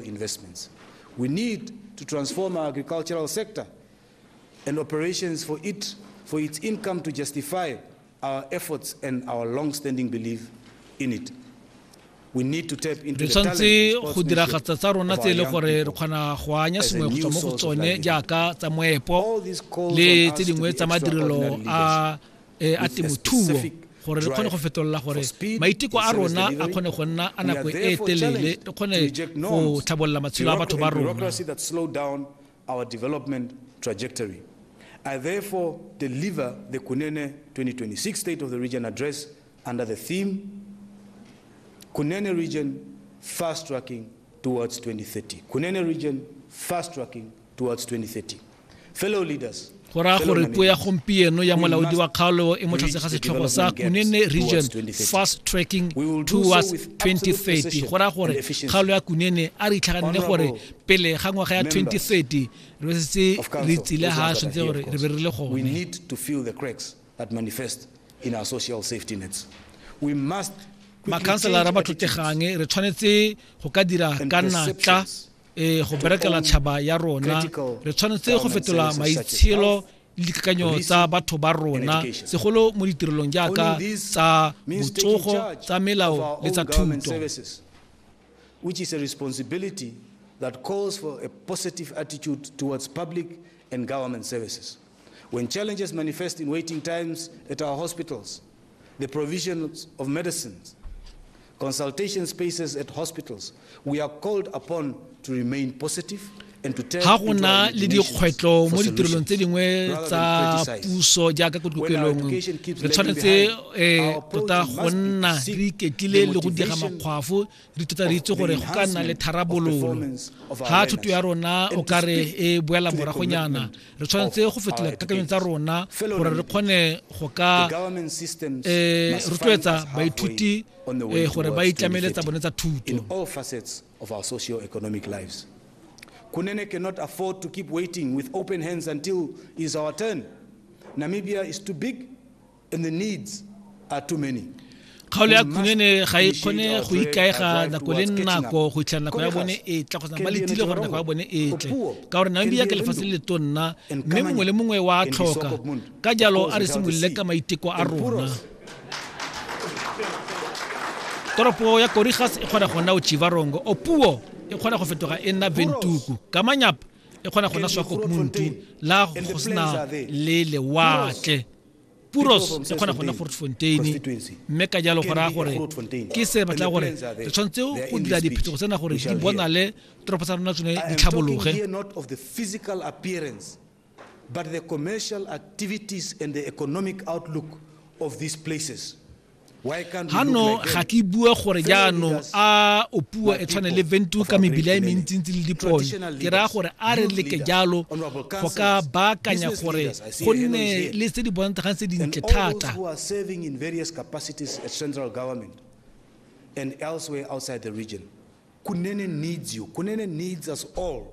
investments. We need to transform our agricultural sector and operations for it for its income to justify our efforts and our long-standing belief in it. We need to tap into re the talent tshwanetse and go sportsmanship diragatsa tsa rona of tse e our le young gore re people. kgona go anya as a sengwe go new tswa mo go source of tsone livelihood. jaaka tsa moepo All these calls le on us tse to dingwe be tsa madirelo extraordinary a e a temothuo gore re kgone go fetolela gore maiteko a rona a kgone go nna a nako e telele re kgone go tlhabolola matshelo a batho ba rona our development trajectory. I therefore deliver the Kunene 2026 State of the Region Address under the theme Kunene Region Fast Tracking towards 2030. Kunene region, fast tracking towards 2030. Fellow leaders, go raya gore puo ya gompieno ya molaodi wa kgaolo e mo tlase ga setlhogo sa kunene region fast tracking towards 2030 go raya gore kgaolo ya kunene a re itlhaganne gore pele ga ngwaga ya 2030 re setse re tsile ga tshwanetse gore re be re le gone that manifest in our social safety nets. We must makhanselara ba tlotlegang re tshwanetse go ka dira ka natla e go berekela tšhaba ya rona re tshwanetse go fetola maitshelo le dikakanyo tsa batho ba rona segolo mo ditirelong jaaka tsa botsogo tsa melao le tsa thuto which is a responsibility that calls for a positive attitude towards public and government services. When challenges manifest in waiting times at our hospitals, the provision of medicines, consultation spaces at hospitals, we are called upon to remain positive ga go na le dikgwetlho mo ditirelong tse dingwe tsa puso jaaka ko dikokelong re tshwanetse um tota go nna re iketlile le go diega makgwafo re tota re itse gore go ka nna le tharabololo ga thuto ya rona o ka re e boela moragonyana re tshwanetse go fetola dikakanyong tsa rona gore re kgone go ka eh, rotloetsa baithuti eh, gore ba itlamele tsa bone tsa thuto Kunene cannot afford to keep waiting with open hands until is our turn. Namibia is too big And the needs are too many. kgaolo ya khunene ga e kgone go ikaega nako le nako go itlha nako ya bone e tla go ba letile gore nako ya bone e tle ka gore nami ya ke lefatshe le tonna mme mongwe le mongwe wa tlhoka ka jalo a re simolole ka maiteko a rona toropo ya korigas e kgona go nna ochivarongo opuo e kgona go fetoga e nna ventuku ka manyapa e kgona go nna swakopmuntu la go sena le lewatle Puros e kgona go nna Grootfontein, mme ka jalo go raya gore ke se batla gore re tshwanetse go dira diphetogo tsena gore di bonale toropo tsa rona tsone di tlhabologe but the commercial activities and the economic outlook of these places. Ganong ga ke bue gore jaanong a o puo e tshwane le ventu ka mebila e mentsintsi le dipone ke raya gore a re leke jalo go ka baakanya gore go nne le tse di bontshagang tse dintle thata and elsewhere outside the region. Kunene needs you. Kunene needs us all.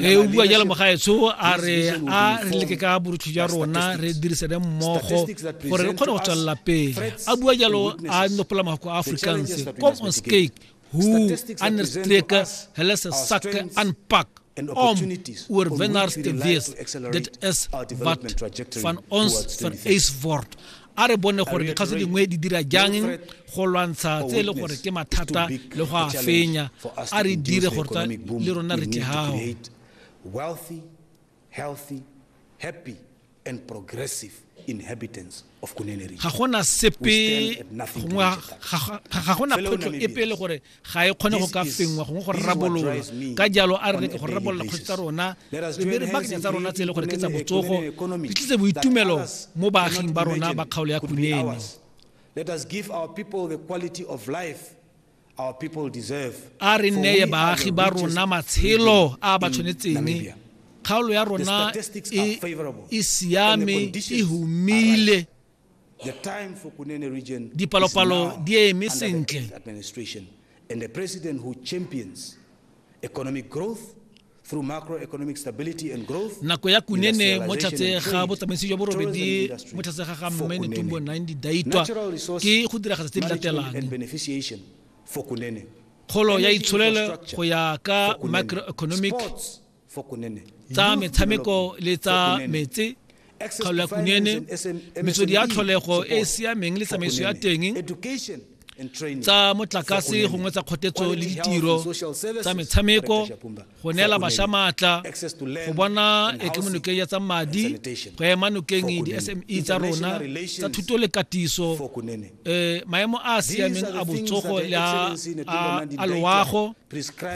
e o bua jalo mogaetsho a re a re leke ka borutho jwa rona re dirisane mmogo gore re kgone go tswelela pele a bua jalo a nopola mafoko a afrikaans com on skake who understrek helese sak anpak om oor wennaars te wees dit is wat van ons vereis word a re bone gore dikgaso dingwe di dira jang go lwantsha tse e le gore ke mathata le go a fenya a re dire gore le rona re tle gago wealthy healthy happy and progressive inhabitants of Kunene region. Ga gona sepe gongwe ga gona photlo epe le gore ga e kgone go ka fengwa gongwe go rarabololwa ka jalo a re leke go rarabolola kgosi tsa rona re be re bakanya tsa rona tse e le gore ke tsa botsogo di tlise boitumelo mo baaging ba rona ba kgaolo ya kunene Let us give our people the quality of life our people deserve. A re neye baagi ba rona matshelo a ba tshwanetseng. Kgaolo ya rona e, e siame, e humile. Dipalopalo di eme sentle. And the president who champions economic growth through macroeconomic stability and growth nako ya kunene mo tlhatse ga botsamaisi jwa borobedi mo tlhatse ga ga mme netumbo 90 daitwa ke go diragatsa tse di latelang kgolo ya itsholelo go ya ka macroeconomic tsa metshameko le tsa metse kgaolo ya kunene metswedi ya tlholego e e siameng le tsamaiso ya teng tsa motlakase gongwe tsa kgotetso le ditiro tsa metshameko go neela bašwa maatla go bona ekemonokeng ya tsa madi go ema nokeng di-sme e tsa rona tsa thuto le katiso um maemo a a siameng a botsogo le a loago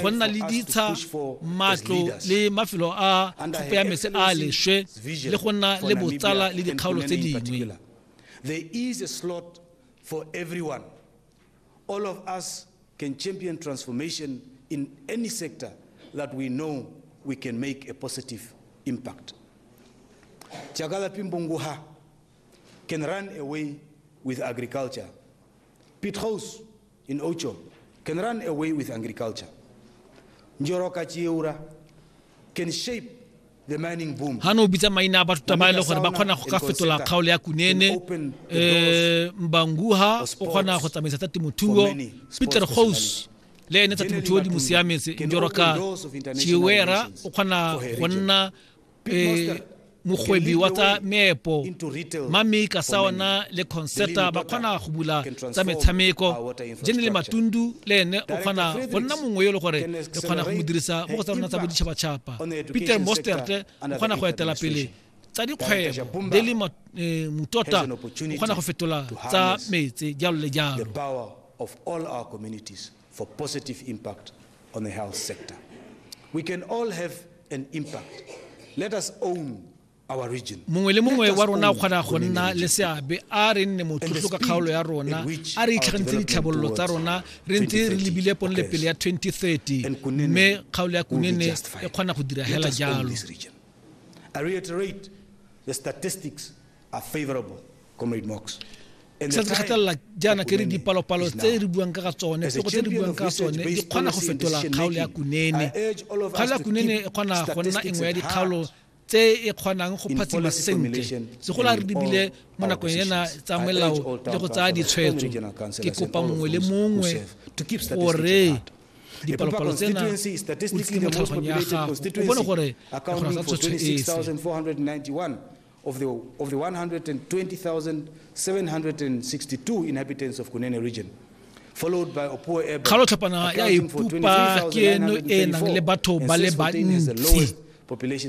go nna le ditsha matlo le mafelo a thupe ya mese a leswe le go nna le botsala le dikgaolo tse dingwe There is a slot for everyone. All of us can champion transformation in any sector that we know we can make a positive impact. Chagala Pimbunguha can run away with agriculture. Pit House In Ocho can run away with agriculture. Njoroka Chiura can shape ga no bitsa maina a batho ta ba e le gore ba kgona go ka fetola kgaolo ya kunene um eh, mbanguha o kgona go tsamaisa tsa temothuo peter gos le ene tsa temothuo di mo siametse njoroka chiwera o kgona go nna eh, mogwebi wa tsa meepo mame ka sa ona le concerta ba kgona go bula tsa metshameko jene le matundu le ene o kgona go nna mongwe yo e le gore re kgona go mo dirisa mo go tsa rona tsa boditšhabatšhaba peter mostert o kgona go etela pele tsa dikgwebo le le eh, motota o kgona go fetola tsa metse jalo le jalo for positive impact on the health sector. We can all have an impact. Let us own our region. mongwe le mongwe wa rona o kgona go nna le seabe a re nne motlotlo ka kgaolo ya rona a re itlhagantseng ditlhabololo tsa rona re ntse re lebile ponle pele ya 2030 mme kgaolo ya kunene e kgona go dira hela jalo I reiterate the statistics Se re gatelela jaana ke re dipalopalo tse re buang ka ga tsone, pego tse re buang ka tsone di kgona go fetola kgaolo ya Kunene. Kgaolo ya Kunene e kgona go nna e nngwe ya dikgaolo tse e kgonang go phatsima sentle, segolo a re lebile mo nakong ena tsa melao le go tsaya ditshwetso. Ke kopa mongwe le mongwe gore dipalopalo tsena o di mo tlhaloganyong ya gago, o bone gore re kgona ka tshwetso e fe. Of the, of the 120,762 inhabitants of Kunene region, kgalotlhapana ya ipupa ke eno e e nang le batho ba le bantsi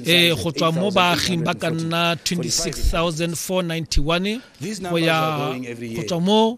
e go tswa mo baaging ba ka nna 26491 go ya go tswa mo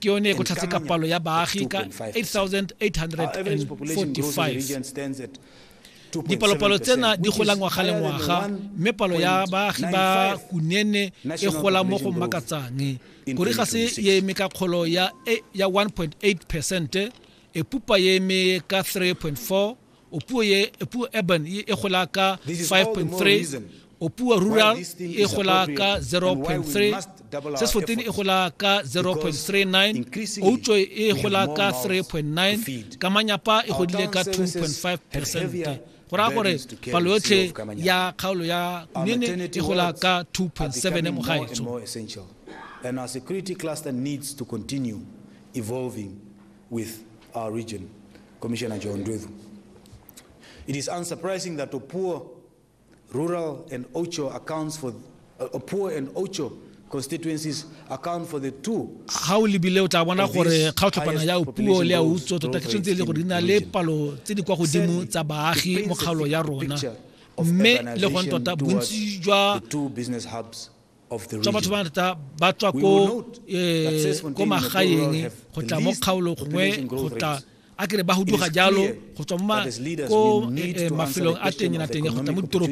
ke yone e kotlhatse ka palo ya baagi ka 8845 dipalopalo tsena di gola ngwaga le ngwaga mme palo ya baagi ba kunene e gola mo go makatsang kore ga se e eme ka kgolo ya 1.8 percent e pupa e eme ka 3.4 O puo ye, e puo urban ye e gola ka 5.3, o puo rural e gola ka 0.3, Seswatini e gola ka 0.39, Outsoi e gola ka 3.9, Kamanyapa e godile ka 2.5 percent. Go raya gore palo yotlhe ya kgaolo ya Kunene e gola ka 2.7 mo gaetsho. and our security cluster needs to continue evolving with our region, Commissioner John Ndwevu. It is unsurprising that Opuo rural and Ocho accounts for uh, Opuo and Ocho constituencies account for the two ga o lebile o tla bona gore kgaotlhopana ya puo le ya utso tota ke tshwanetse e le gore di na le palo tse di kwa godimo tsa baagi mo kgaolo ya rona mme le gone tota bontsi jwa tswa batho ba ngata ba tswa ko eh, ko magaeng go tla mo kgaolo gongwe go tla a kere ba huduga jalo go tswa mo eh, eh, mafelong a teng na teng go tla mo ditoropong